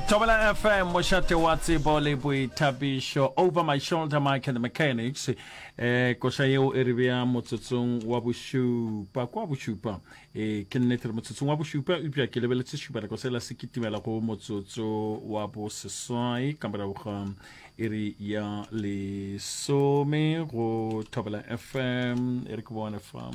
Tobela FM mošate wa tsebo le boithabišo over my shoulder Mike and the mechanics eh koša yeo e re bea motsotsong wa bošupa kwa bošupa eh ke nnete re motsotsong wa bošupa eupša ke lebeletse šupanako sela se kitimela go motsotso wa boseswai ka morago ga iri ya lesome go Tobela FM e re ke bone fam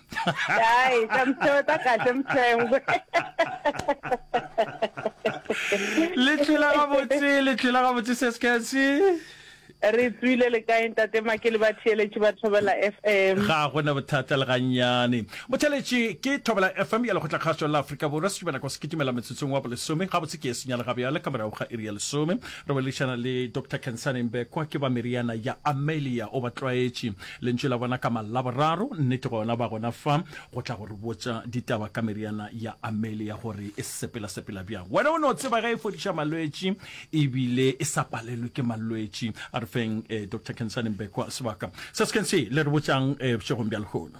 Ai, sa mtheo ta kahle mthengwe. Le tshela ga botse, le tshela ga botse se sketsi. Re tswile le kae ntate ma ke le ba theeletše ba Thobela FM. Ga go na bothata le gannyane. Motheletše ke Thobela FM ya lekgotla kgaso la Afrika Borwa se tšubana kwa se kitimela metsotsong wa bolesome ga botse ke e senyale ga bjale ka morago ga iri ya lesome. Re boledišana le Doctor Khensani Mbekwa ke ba meriana ya Amelia o ba tlwaetše. Lentšu la bona ka Malaboraro, nnete gona ba gona fa, go tla go re botša ditaba ka meriana ya Amelia gore e sepelasepela bjang. Wena o no tseba ge e fodiša malwetši e bile e sa palelwe ke malwetši. A re feng Doctor Khensani Mbekwa sebaka se se kentsi le re botšang bošegong bja lehono.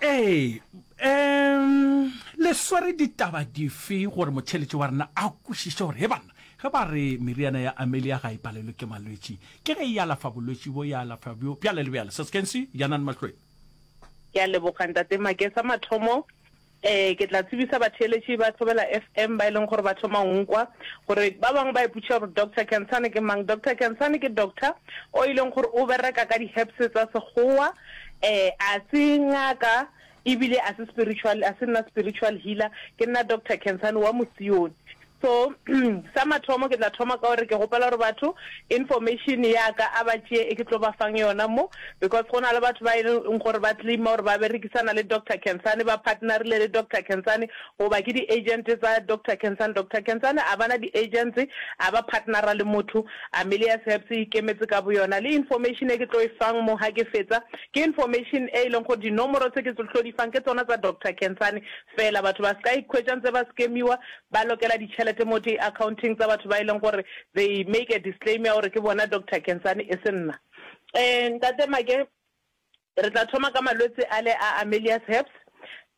Ee, um le swere ditaba dife gore motheeletši wa rena a kwešiše gore, he banna, ge ba re meriana ya Amelia ga e palelwe ke malwetši, ke ge e alafa bolwetši bjo, e alafa bjo, bjale le bjale, Saskensi, Janani Mahlweng? Ke a leboga, Ntate Make. Sa mathomo, um ke tla tsebisa batheeletši ba Thobela FM ba e leng gore ba thoma go nkwa, gore ba bangwe ba ipotšiša gore Doctor Khansani ke mang. Doctor Khansani ke doctor o e leng gore o bereka ka di-herbs tsa Sekgowa, Ee, a se ngaka e bile a se spiritual, a se nna spiritual healer, ke nna Doctor Khensani wa Mosione. So sa mathomo ke tla thoma ka gore ke kgopela gore batho information ya ka a ba tšee e ke tlo ba fang yona mo, because go na le batho ba e leng gore ba claim-a gore ba berekisana le Doctor Khensani, ba partner-ile le Doctor Khensani, Goba ke di-agent tsa Doctor Khensani. Doctor Khensani a ba na di-agents, a ba partnera le motho. Amelia's Herbs e ikemetse ka boyona. Le information e ke tlo e fang mo ha ke fetsa, ke information e e leng gore dinomoro tse ke tlo di fang ke tsona tsa Doctor Khensani fela. Batho ba se ka ikhwetša ntse ba scam-iwa, ba lokela ditšhelete mo di-account-eng tsa batho ba e leng gore they make a disclaim ya gore ke bona Doctor Khensani, e se nna. Ntate Make, Re tla thoma ka malwetse ale a a Melius Herpes,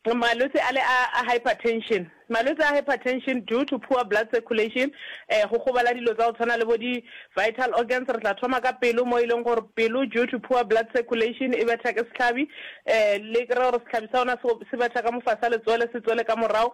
malwetse ale a a hypertension. Malwetse a hypertension due to poor blood circulation, um go gobala dilo tsa go tshwana le bo di vital organs. Re tla thoma ka pelo mo e leng gore pelo due to poor blood circulation e betha ke sehlabi, um le kry-e gore sehlabi sa yona se betha ka mofase ga letswele se tswele ka morago,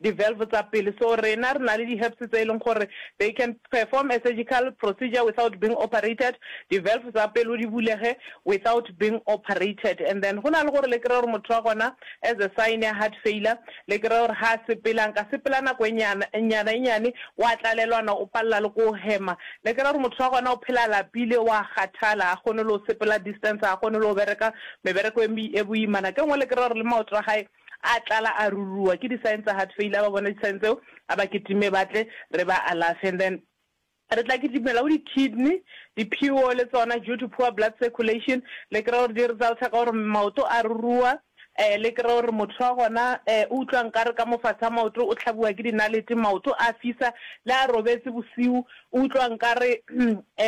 Di valve tsa pelo. So rena re na le di herbs tse e leng gore they can perform a surgical procedure without being operated, di valve tsa pelo di bulege without being operated. And then go na le gore le kry-e gore motho wa gona as a sign ya heart failure le kry-e gore ga a sepela, nka sepela nako e nnyana e nnyane wa tlalelwana o palela le ko hema. Le kry-e gore motho wa gona o phela a lapile wa kgathala ga kgone le go sepela distance, ga kgone le go bereka mebereko e boimana. Ke nngwe le kry-e gore le maoto a gae A tlala a ruruwa ke di sign tsa heart failure, a ba bone di sign tseo, a ba kitime ba tle re ba alafe and then re tla kitimela go di kidney, di pure le tsona due to poor blood circulation, le kry-e gore di resulta ka gore maoto a ruruwa, um le kry-e gore motho wa gona um o utlwa nkare ka mo fatshe ga maoto o hlabiwa ke dinalete, maoto a fisa, le a robetse bosiu O utlwa nkare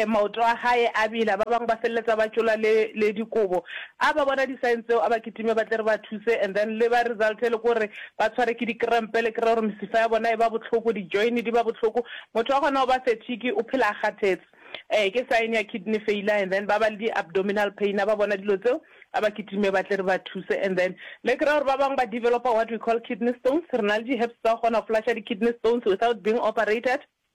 maoto a gae a bela. Ba bangwe ba feleletsa ba tšola le, le dikobo. A ba bona di-sign tseo, a ba kitime ba tle re ba thuse. And then le ba result e le ko re ba tshware ke di-cramp, le kry-e gore mesifa ya bona e ba bohloko, di-join di ba bohloko. Motho wa gona o ba fatigue, o phela a kgathetse. Ee, ke sign ya kidney failure. And then ba ba le di-abdominal pain. A ba bona dilo tseo, a ba kitime ba tle re ba thuse. And then le kry-e gore ba bangwe ba developer what we call kidney stones. Re na le di-herbs tsa go kgona go flusher di-kidney stones without being operated.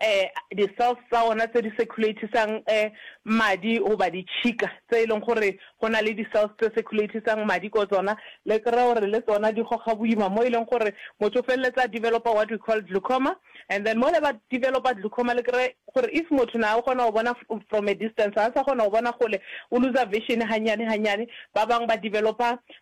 e, di-cells tsa ona tse di circulate-isang e, madi goba ditšhika tse e leng gore go na le di-cells tse circulate-isang madi ko tsona, le kry-e gore le tsona di goga boima mo e leng gore motho o feleletsa a developer what we call glaucoma and then mole ba developer glaucoma le kry-e gore if motho na o kgona go bona from a distance ga a sa kgona go bona kgole, o looser vision gannyane gannyane, ba bangwe ba developer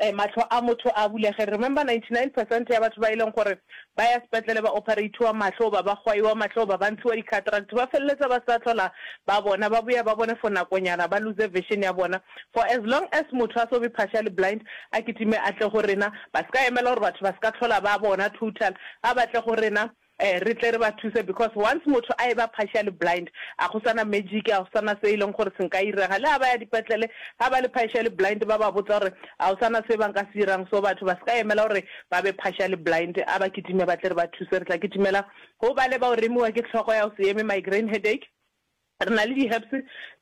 Ee, mahlo a motho a bulege. Remember 99 percent ya batho ba e leng gore ba ya sepetlele ba opereithiwa mahlo goba ba gwaiwa mahlo goba ba ntshiwa di-cataract ba feleletsa ba sa hlola ba bona, ba boya ba bone for nakonyana, ba lose vision ya bona. For as long as motho a so be partially blind, a kitime a tle go rena. Ba se ka emela gore batho ba se ka hlola ba bona total, a ba tle go rena. Ee, re tle re ba thuse because once motho a eba partially blind, a go sa na magic, a go sa na se e leng gore se nka irega. Le ha ba ya dipetlele, ha ba le partially blind, ba ba botsa gore a go sa na se ba nka se irang. So batho ba se ka emela gore ba be partially blind, a ba kitime ba tle re ba thuse. Re tla kitimela go ba le bao remiwa ke tlhogo ya go se eme, migraine headache. Re na le di herbs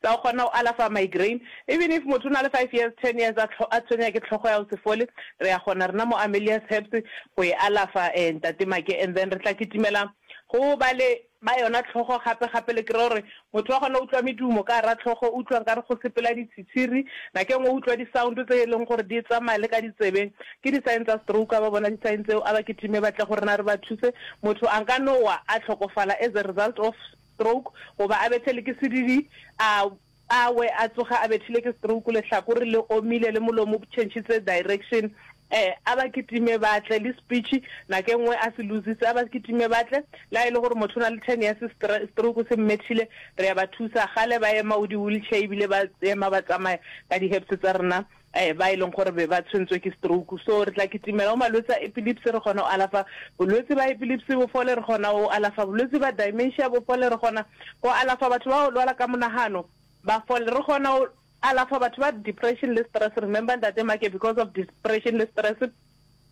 tsa go kgona go alafa migraine. Even if motho o na le five years, ten years a a tshwenya ke tlhogo ya go se fole, re a kgona rena mo Amelia's Herbs go e alafa eh Ntate Make. And then re tla kitimela go ba le ba yona tlhogo gape gape le kry-e gore motho wa kgona go utlwa medumo ka gara tlhogo, o utlwa nkare go sepela ditshitshiri. Nako e nngwe o utlwa di sound tse e leng gore di tsamaya le ka ditsebeng. Ke di sign tsa stroke, a ba bona di sign tseo a ba kitime ba tle go rena re ba thuse. Motho a nka no wa a tlhokofala as a result of. stroke, goba a bethele ke sedidi, a a we a tsoge a bethile ke stroke, lehlakore le omile le molomo o bchentšhitse direction, eh, a ba kitime ba tle, le speech nako e nngwe a se lositse, a ba kitime ba tle, le ha e le gore motho o na le ten years stre, stroke se mmethile, re ya ba thusa, kgale ba ema o di wheelchair ebile ba ema ba tsamaya ka di hips tsa rena, ba e leng gore be ba tshwentswe ke stroke. So re tla kitimela go malwetse a epilepsy, re kgone go alafa bolwetse ba epilepsy bo fole, re kgona go alafa bolwetse ba dementia bo fole, re kgona go alafa batho ba go lwala ka monagano ba fole, re kgona go alafa batho ba depression le stress, remember Ntate Make because of depression le stress,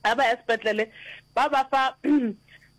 Ga ba ya sepetlele ba ba fa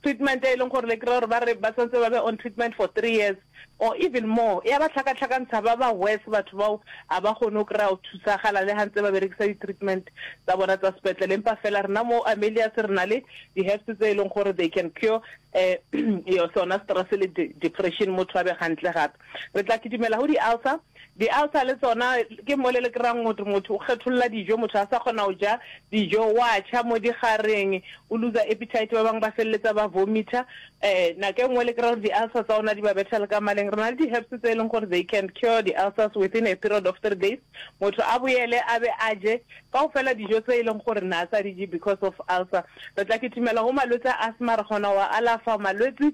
treatment e e leng gore le kry-a gore ba re ba santse ba be on treatment for three years or even more. E a ba tlhakatlhakantsha ba ba worse batho bao, ga ba kgone go kry-a go thusagala le ga ntse ba berekisa di-treatment tsa bona tsa sepetlele. Empa fela rena mo Amelius re na le di-herbs tse e leng gore they can cure um sona stress le depression, motho a be gantle gape. Re tla kidimela go di-ulcer. Di-ulcer le tsona ke mole le kry-ang gote motho o kgetholla dijo, motho ga a sa kgona go ja dijo, o a tšha mo digareng, o looser appetite, ba bangwe ba feleletsa ba vomitha. Um nako e nngwe le kry-a gore di-ulcer tsa ona di ba betha le ka maleng. Re na le di-herbs tse e leng gore they can cure di-ulcers within a period of three days, motho a boele a be a je kaofela dijo tse e leng gore ne a sa di je because of ulcer. Re tla kitimela go malwetse a asthma, re kgona go a alafa malwetse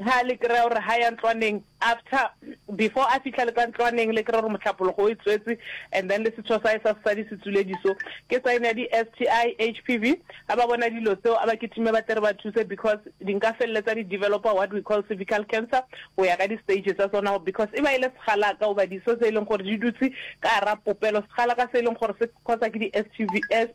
Ha le kry-a gore ha ya ntlwaneng, after, before a fihla le ka ntlwaneng, le kry-a gore mohlapologo o e tswetse, and then le setho sa hae sa sesadi se tswile diso. Ke sign ya di-STI, HPV. Ha ba bona dilo tseo, a ba kitime ba tle re ba thuse because di nka feleletsa di developer what we call cervical cancer go ya ka di-stage tsa tsona because e ba e le segalaka goba diso tse e leng gore di dutse ka gare ga popelo, segalaka se e leng gore se cause-a ke di-STIs.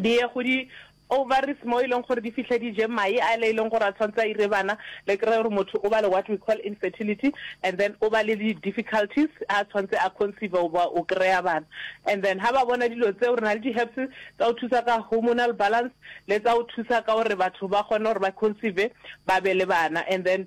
di ye go di ovaries mo e leng gore di fihle di je mae a le e leng gore a tshwanetse a ire bana, le kry-e gore motho o ba le what we call infertility and then o ba le di-difficulties ha a tshwanetse a conceive goba go kry-a bana. And then ha ba bona dilo tseo, re na le di-herbs tsa go thusa ka hormonal balance le tsa go thusa ka gore batho ba kgone gore ba conceive ba be le bana and then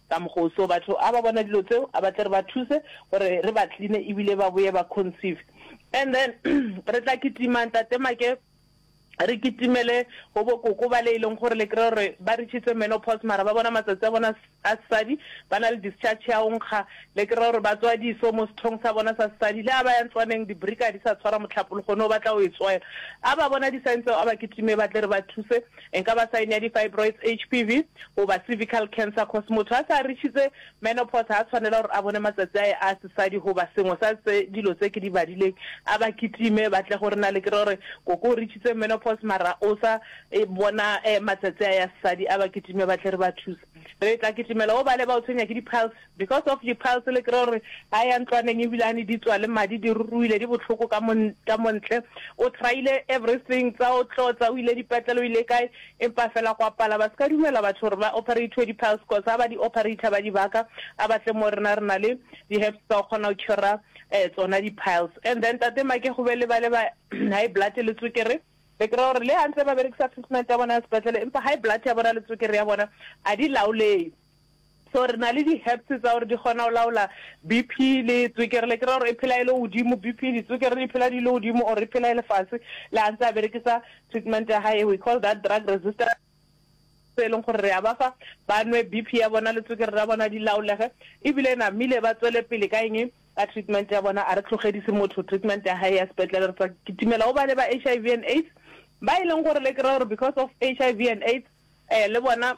Ka mokgwa o seo, batho a ba bona dilo tseo, a ba tle re ba thuse gore re ba cleane ebile ba boye ba conceive. And then re tla kitima Ntate Make, re kitimele go bo koko bale e leng gore le kry-a gore ba reach-itse menopause mara ba bona matsatsi a bona a sesadi, ba na le discharge ya go nkga, le kry-a gore ba tswa diso mo sethong sa bona sa sesadi. Le ha ba ya ntlwaneng, dibrika ga di sa tshwara mohlapo, lehono o batla go e tswela. A ba bona di-sign tseo, a ba kitime ba tle re ba thuse. E ka ba sign ya di-fibroids, HPV, goba cervical cancer cos motho a se a reachitse menopause ga a tshwanela gore a bone matsatsi a ye a sesadi goba sengwe sa tse dilo tse ke di badileng a ba kitime ba tle go re na le kere gore koko o reachitse menopause mara o sa e bona matsatsi a ya sesadi a ba kitime ba tle re ba thuse re tla kitimela o bale ba o tshwenya ke di-piles Because of di piles le kry-a gore a ya ntlwaneng ebilane di tswa le madi di ruruile di bohloko ka mo ka mo ntle. O try-ile everything tsa o tlotsa o ile dipetlele o ile kae empa fela gwa pala. Ba se ka dumela batho gore ba operate-we di piles cos ha ba di operator ba di baka a ba tle mo rena re na le di herbs tsa go kgona go cure-a tsona di piles. And then Tate Make go be le ba le ba high blood le tswekere le kry-a gore le ha ntse ba berekisa treatment ya bona ya sepetlele empa high blood ya bona le tswekere ya bona a di laolege. So re na le di herbs tsa gore di kgona go laola BP le tswekere le ke ra gore e phela e le godimo BP di tswekere di phela di le godimo or e phela e le fase le a ntse a berekisa treatment ya hae we call that drug resistance se e leng gore re a ba fa ba nwe BP ya bona le tswekere ra bona di laolege ebile e namile ba tswele pele ka eng ka treatment ya bona a re tlogedise motho treatment ya hae ya sepetlele re tsa kitimela o ba le ba HIV and AIDS ba e leng gore le ke ra gore because of HIV and AIDS eh le bona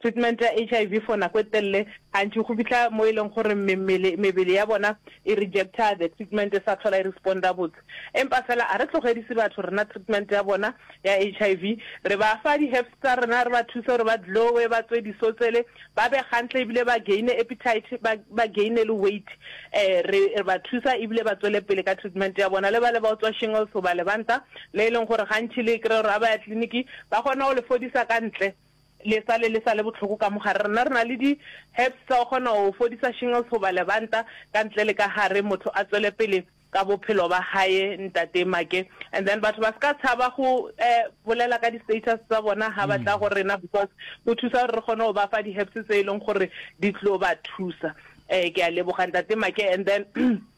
Treatment ya HIV for nako e telle gantši go fihla mo e leng gore memmele, mebele ya bona e rejecta the treatment e sa hlola e responda botse. Empa fela a re tlogedise batho rena treatment ya bona ya HIV, re ba fa di herbs tsa rena, re ba thuse gore ba glowe, ba tswe disotsele, ba be gantle ebile ba gaine appetite, ba ba gaine le weight. Eh, re re ba thusa ebile ba tswele pele ka treatment ya bona. Le bale ba o tswa shingles goba lebanta le e leng gore gantši le e kry-a gore ga ba ya clinic ba kgona go le fodisa ka ntle Le sa le le sa le bohloko ka mogare. Rena re na le di herbs tsa go kgona go fodisa shingles goba lebanta ka ntle le ka gare motho a tswele pele ka bophelo ba haye Ntate Make. And then batho ba ska tshaba go bolela ka di status tsa bona ha ba tla go rena because go thusa gore re kgone go ba fa di herbs tse e leng gore di tlo ba thusa. Ke a leboga Ntate Make and then.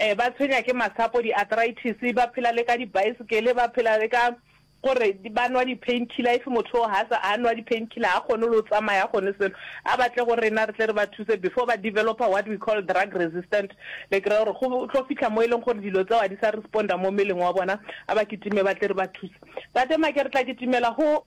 Ee, ba tshwenya ke masapo, di-arthritis, ba phela le ka dibaesekele, ba phela le ka gore ba nwa di-painkiller. If motho o ha sa a nwa di-painkiller, ha kgone le go tsamaya, ha kgone selo. A ba tle go rena re tle re ba thuse before ba developer what we call drug resistant. Le kry-a gore go tlo fitlha mo e leng gore dilo tseo ha di sa responder mo mmeleng wa bona, a ba kitime ba tle re ba thuse. Tate Make re tla kitimela go.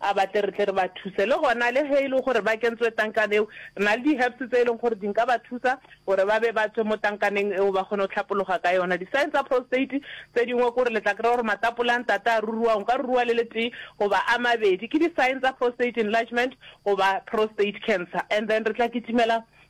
A ba tle re tle re ba thuse. Le gona le ge e le gore ba kentswe tankan eo, re na le di-herbs tse e leng gore di nka ba thusa gore ba be ba tswe mo tankaneng eo ba kgone go hlapologa ka yona. Di-sign tsa prostate tse dingwe ke gore le tla kry-a gore matapole a ntate a ruruwa, o nka ruruwa le letee goba a mabedi. Ke di-sign tsa prostate enlargement goba prostate cancer. And then re tla kitimela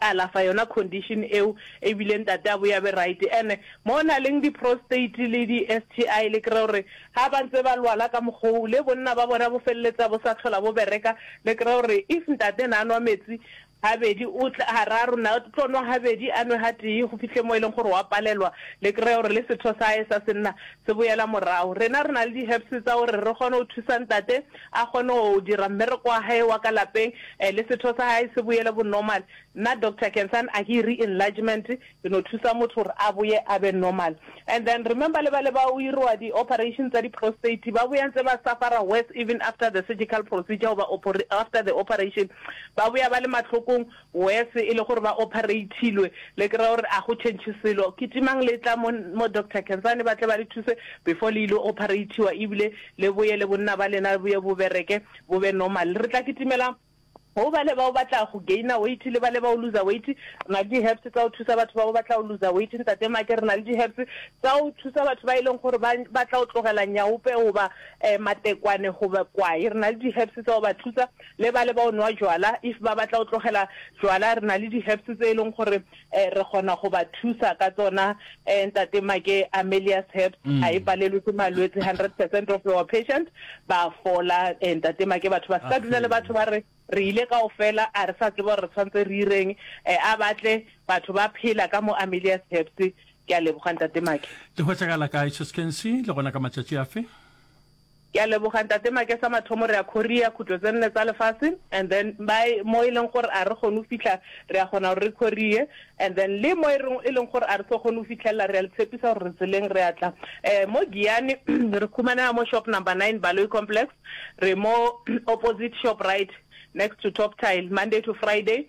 Ka alafa yona condition eo ebile ntate a boya be right ene mo na leng di prostate le di STI le kry gore ha ba ntse ba lwala ka mokgwa oo le bonna ba bona bo feleletsa bo sa tlhola bo bereka le kry gore if ntate na nwa metsi ha bedi o tla hararo na tlo nwa ha bedi a nwe ha tee go fihle mo e leng gore wa palelwa le kry gore le setho sa hae sa senna se boyela morago rena re na le di herbs tsa gore re kgone go thusa ntate a kgone go dira mmereko wa hae wa ka lapeng le setho sa hae se boele bo normal. Nna doctor ke ntsane a ke iri enlargement ke no thusa motho gore a boye a be normal. And then remember le bale ba o iriwa di operation tsa di prostate ba boya ntse ba suffer-a worse even after the surgical procedure goba after the operation ba boya ba le mahlokong. Worse e le gore ba operatilwe, le kry-a gore a go change selo. Ke timang le tla mo mo Doctor Khensani ba tle ba le thuse before le ile operatiwa ebile le boye le bonna ba lena boye bo bereke bo be normal. Re tla kitimela go bale bao ba tla go gainer weight le bale bao looser weight. Re na le di herbs tsa go thusa batho bao ba tla go looser weight Ntate Make, re na le di herbs tsa go thusa batho ba e leng gore ba ba tla go tlogela nyaope goba matekwane goba kwae. Re na le di herbs tsa go ba thusa. le bale ba o nwa jwala if ba batla o tlogela jwala re na le di herbs tse e leng gore eh, re kgona go ba thusa ka tsona eh, ntate make amelias herbs a e palelwe ke malwetse 100 percent of our patient ba fola eh, ntate make batho ba se ka dula le batho ba re re ile ka o fela a re sa tseba gore re tshwanetse re ireng eh, a batle batho ba phela ka mo amelias herbs ke a leboga ntate make le hwetšagala kae cheskensi le gona ka matšatši afe Ke a leboga ntate Makesa mathomo re a khoria khutlo tse nne tsa lefase and then by mo e leng gore a re kgone go fitlha re a kgona gore re khorie and then le mo e reng e leng gore a re tlo kgone go fitlhelela re a le tshepisa gore re tseleng re a tla eh mo Giyani re khumanela mo shop number nine Baloyi complex re mo opposite Shoprite next to Top Tile Monday to Friday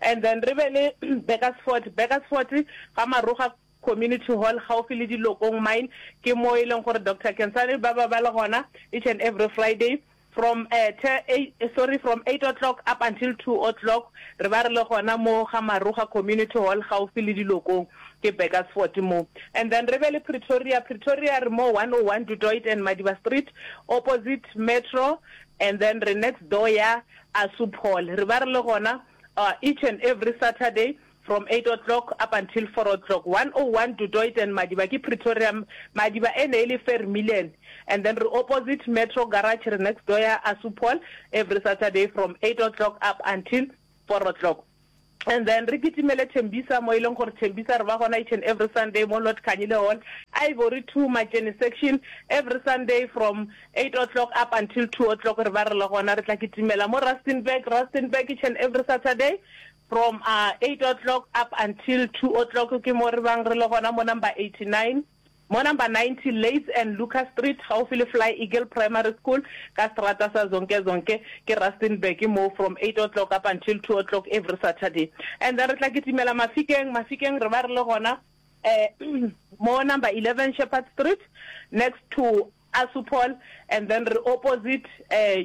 and then re be le Beckersfort. Beckersfort ga Maroga Community Hall gaufi le Dilokong Mine ke mo e leng gore Doctor Kensani ba ba ba le gona each and every Friday from uh, te, eight, sorry from 8 o'clock up until 2 o'clock re ba re le gona mo ga Maroga Community Hall gaufi le Dilokong ke Beckersfort mo and then re be le Pretoria Pretoria re mo 101 Du Toit and Madiba Street opposite Metro and then re next door ya A su Paul, re ba re le gona uh, each and every Saturday from eight o'clock up until four o'clock, one o one Du Toit and Madiba ke Pretoria, Madiba e ne e le Vermillion, and then re opposite Metro Garage, re next door ya A su Paul, every Saturday from eight o'clock up until four o'clock. And then re kitimele Tembisa mo e leng gore Tembisa re ba gona each and every Sunday mo Lord Khanyile Hall, Ivory Two, Matšeni Section, every Sunday from eight o'clock up until two o'clock re ba re le gona. Re tla kitimela mo Rustenburg, Rustenburg, each and every Saturday from eight o'clock up until two o'clock ke mo re bang re le gona mo number eighty nine. Mo number 90 Leys and Lucas Street, gaufi le Fly Eagle Primary School, ka seterata sa Zonke Zonke, ke Rustenburg moo, from eight o'clock up until two o'clock every Saturday. And then re tla kitimela Mafikeng, Mafikeng re ba re le gona mo number eleven Shepherd Street, next to. Assupol and then re opposite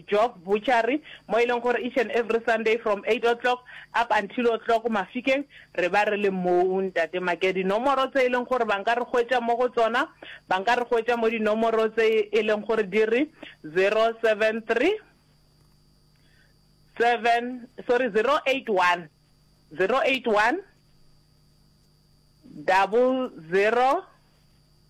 Jock Butchery mo e leng gore each and every Sunday from eight o'clock up until o'clock Mafikeng re ba re le moo Ntate Make. Dinomoro tse e leng gore ba nka re hwetša mo go tsona ba nka re hwetša mo dinomoro tse e leng gore di re zero seven three seven sorry zero eight one zero eight one double zero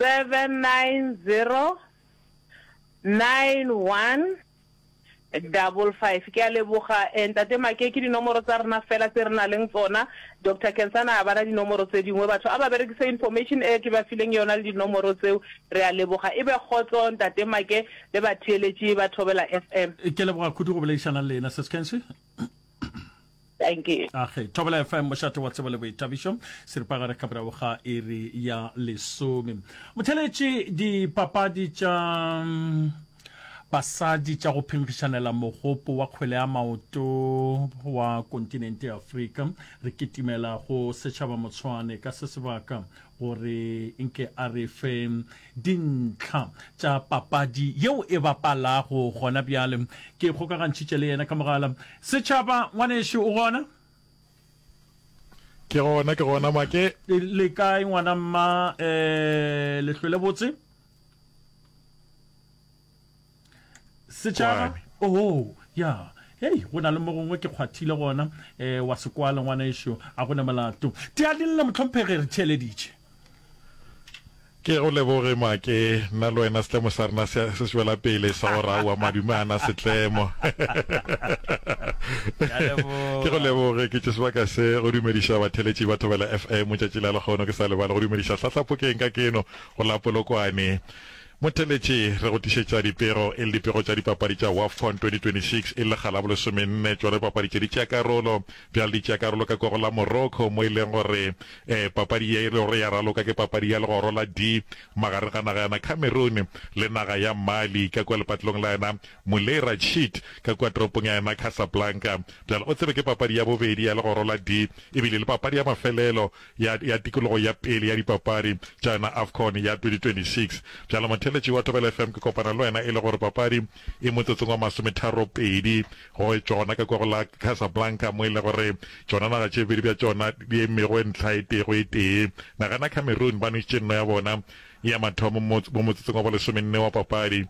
7909155. Ke a leboga eh Ntate Maake, ke dinomoro tsa rena fela tse re na leng tsona. Doctor Kensana a bana dinomoro tse dingwe. Batho a ba berekise information e ke ba fileng yona le dinomoro tseo. Re a leboga. E be kgotso Ntate Maake le batheeletši ba Thobela FM. Ke a leboga kudu go boledišana le lena, Seskensi. thank you age thobela fm mošate wa tsebo le boithabišo seripagare ka morago ga iri ya lesome motheletše dipapadi tša mm, basadi tša go phenkgišanela mogopo wa kgwele ya maoto wa kontinente ya afrika re kitimela go setšhaba motshwane ka se sebaka gore nke a re fe Dintlha tša papadi yeo e bapalago gona bjale. Ke ikgokagantšhitše le yena ka mogala. Setšhaba, ngwanešu, o gona? Ke gona, ke gona, Make. Le kae, ngwana mma? Um, le hlwele botse? setšhaba oho ya hei go na le mo gongwe ke kgwathile gona um wa sekwala ngwana ešo a go ne molato teadinle motlhomphege re theeleditše ke go leboge make nna le wena setlemo sa rena se swela pele sa go raowa madume ana setlemo ke go leboge ke tše sebaka se go dumediša batheletši ba thobela fm tšatši la lekgono ke sa lebale go dumediša hlahlapokeng ka keno go la polokwane Motheletši, Re go tlišetša dipego e le dipego tša dipapadi tša Wafcon 2026 e le lekga la bolesomenne. Tšona dipapadi tše di tšea karolo bjale di tšea karolo ka koro la Morocco mo e leng gore eh papadi ye e le gore ya raloka ke papadi ya legoro la D magareng ga naga yana Cameroon le naga ya Mali ka kua lepatlelong la yona Moulay Rachid ka kua toropong ya yona Casablanca. Bjale o tsebe ke papadi ya bobedi ya legoro la D ebile le papadi ya mafelelo ya ya tikologo ya pele ya dipapadi tša yona Afcon ya 2026. Bjalo motheletši wa Thobela FM ke kopana le wena e le gore papadi e motsotsong wa masometharo pedi go tšona ka kwa go la Casablanca mo e le gore tšona naga tše bedi bja tšona di emego ntlha e tee go e tee. Nagana ya Cameroon ba nwešitše nno ya bona ya mathomo mo motsotsong wa bolesomenne wa papadi.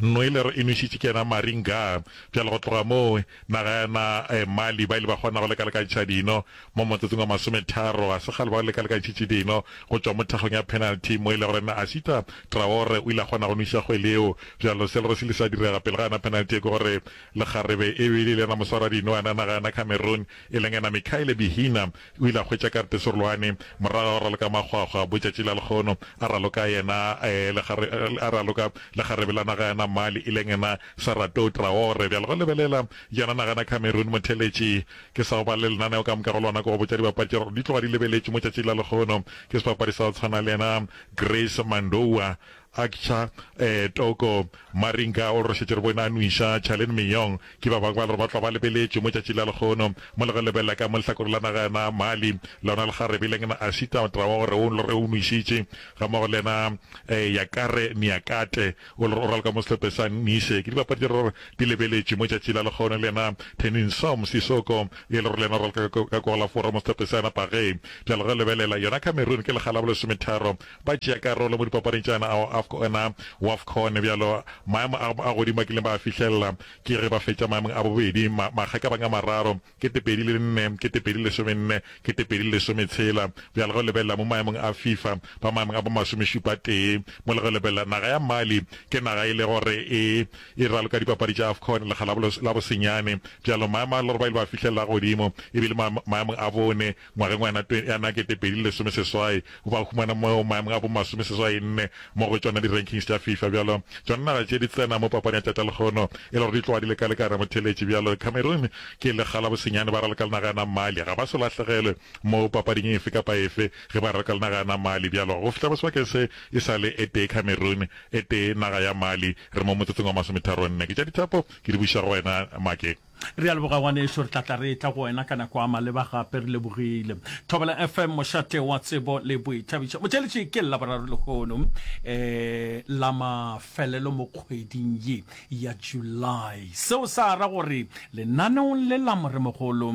Noeller e nwešitše ke yena Maring Ga. Bjale go tloga moo, naga ya na Mali ba ile ba kgona go lekalekantšha dino mo motsotsong wa masometharo. Ga se kgale ba lekalekantšhitše dino go tšwa mo thakgong ya penalty mo e le gore na Asita Traore o ile a kgona go nweša kgwele yeo. Bjalo se e lego se ile sa direga pele ga yona penalty e ke gore lekgarebe e be e le yena moswaradino wa yona naga ya na Cameroon e leng yena Mikhaile Bihina O ile a hwetša Karpe Serolwane morago ga go raloka makgwakgwa botšatši la lekgono, a raloka yena a raloka le kgarebe la naga ya Namali e leng yena Saratou Traore. Bjale go lebelela yona naga yena Cameroon, motheeletši ke sa go ba le lenaneo ka moka go lona ke go botša dibapadi tša gore di tloga di lebeletšwe mo tšatšing la lekgono ke sebapadi sa go tshwana le yena Grace Mandoua Akcha, ee, Toko, Maringa, o re šetše re bone a nwiša, Chale le Miyong ke ba bangwe ba lore ba tlwa ba lebeletše mo tšatši la lekgono. Mo le go lebelela ka mo lehlakoreng la naga yona Mali, lona lekgarebe le ngina Ashita, taba wa gore o lore o nwišitše, gammogo le yena ee, Yakare Niakate, o lore o raloka mo sehlope sa Nise. Ke dibapadi tše re lore di lebeletše mo tšatši la lekgono. Le yena Thenninsoom Sisoko, e lore le yena o raloka ka kogolafora mo sehlope sa yona Page. Bjale ge o lebelela, yona Cameroon ke lekga la bolesometharo ba tšea karolo mo dipapading tša yona ona Wafcon. Bjalo maemo a a godimo a kileng ba a fihlelela ke ge ba fetša maemong a bobedi makgakabang a mararo, kete pedi le nne, kete pedi lesome nne, kete pedi le lesome tshela. Bjalo ge o lebelela mo maemong a FIFA ba maemong a bo masomešupa tee mo le ge o lebelela naga ya Mali ke naga e le gore e e raloka dipapadi tša Afcon lekga la bosenyane. Bjalo maemo a le gore ba ile ba fihlelela a godimo e bile maemong a bone. Ngwageng wa yana ya na kete pedi le lesome seswai, o ba humana mo maemong a bo masome seswai nne mo go tšona di rankings tša FIFA. Bjalo tšona naga tše di tsena mo papadi ya tšatša lekgono e le gore di tloga di le ka le ka ramotheletši. Bjalo Cameroon ke le kga la bosenyane ba raloka le naga ya na Mali. Ga ba so lahlegelwe mo papading efe kapa efe ge ba raloka le naga ya na Mali. Bjalo go fihla mo sebakeng se e sa le e tee Cameroon e tee naga ya Mali re mo motsotsong wa masometharo nne. Ke tša dithapo ke di buša go wena Make. Re a leboga ngwanešu, re tla tla re etla go wena ka nako a maleba gape. Re lebogile. Thobela FM, mošate wa tsebo le boithabišo. Motšeletši ke Laboraro lehono um la mafelelo mo kgweding ye ya July. Seo sa ra gore lenaneong le la Moremogolo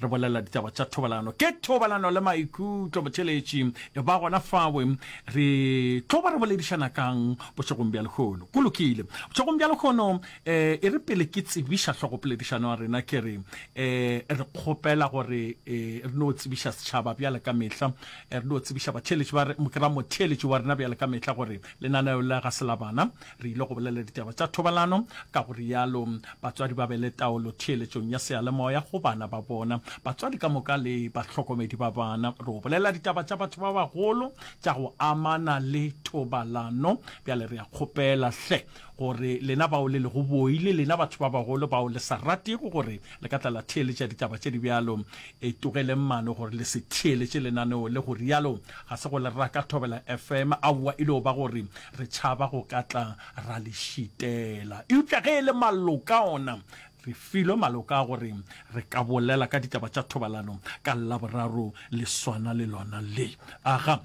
re bolela ditaba tša thobalano. Ke thobalano le maikutlo, motšeletši. E ba gona fawe re tlo ba re boledišana kang bošegong bja lehono? Go lokile. Bošegong bja lehono um e re pele ke tsebiša hlogopoledišano ya rena ke re um re kgopela gore um re no tsebiša setšhaba bjale ka mehla um re no tsebiša batheeletši ba kra motheeletši wa rena bjale ka mehla gore lenaneo la ga se la bana re ile go bolela ditaba tša thobalano ka go rialo batswadi ba be le taolo theeletšong ya seyalemoya go bana ba bona batswadi ka moka le batlhokomedi ba bana re o bolela ditaba tša batho ba bagolo tša go amana le thobalano bjale re a kgopela hle gore lena bao le lego boi le lena batho ba bagolo bao le sa ratego gore le ka tla la theeletša ditaba tše di bjalo, e tlogeleng mano gore le se theeletše lenaneo le. Go realo ga se go le raka thobela FM, aowa, e no ba gore re tšhaba go ka tla ra le šitela. Eupša ge e le maloka ona, Re filwe maloko a gore re ka bolela ka ditaba tša thobalano ka Laboraro le swana le lona le. Aga.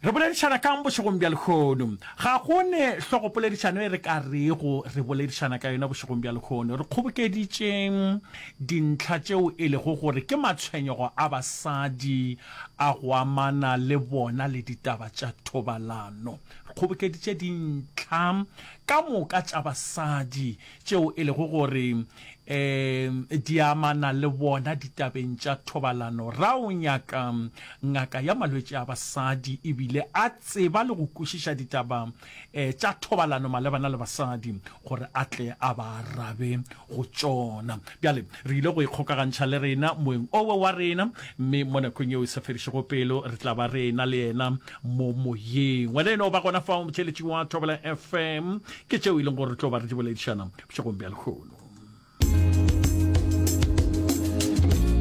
Re boledišana ka'ng bošegong bja lehono? Ga go ne hlogopoledišano e re ka rego re boledišana ka yona bošegong bja lehono. Re kgobokeditše dintlha tšeo e lego gore ke matshwenyego a basadi a go amana le bona le ditaba tša thobalano. Re kgobokeditše dintlha ka moka tša basadi tšeo e lego gore e di amana le bona ditabeng tša thobalano. Ra o nyaka ngaka ya malwetši a basadi e bile a tseba le go kwešiša ditaba e tša thobalano malebana le basadi gore a tle a ba arabe go tšona. Bjale re ile go ikgokagantšha le rena moeng owe wa rena, mme mo nakong yeo e sa fedišego pelo re tla ba re ena le yena mo moyeng. Wena e no ba gona fao, motšheletši wa Thobela FM, Ke tšeo e leng gore re tlo ba re di boledišana bošegong bja lehono.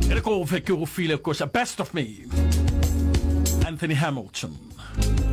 E re kofe ke go file koša best of me Anthony Hamilton.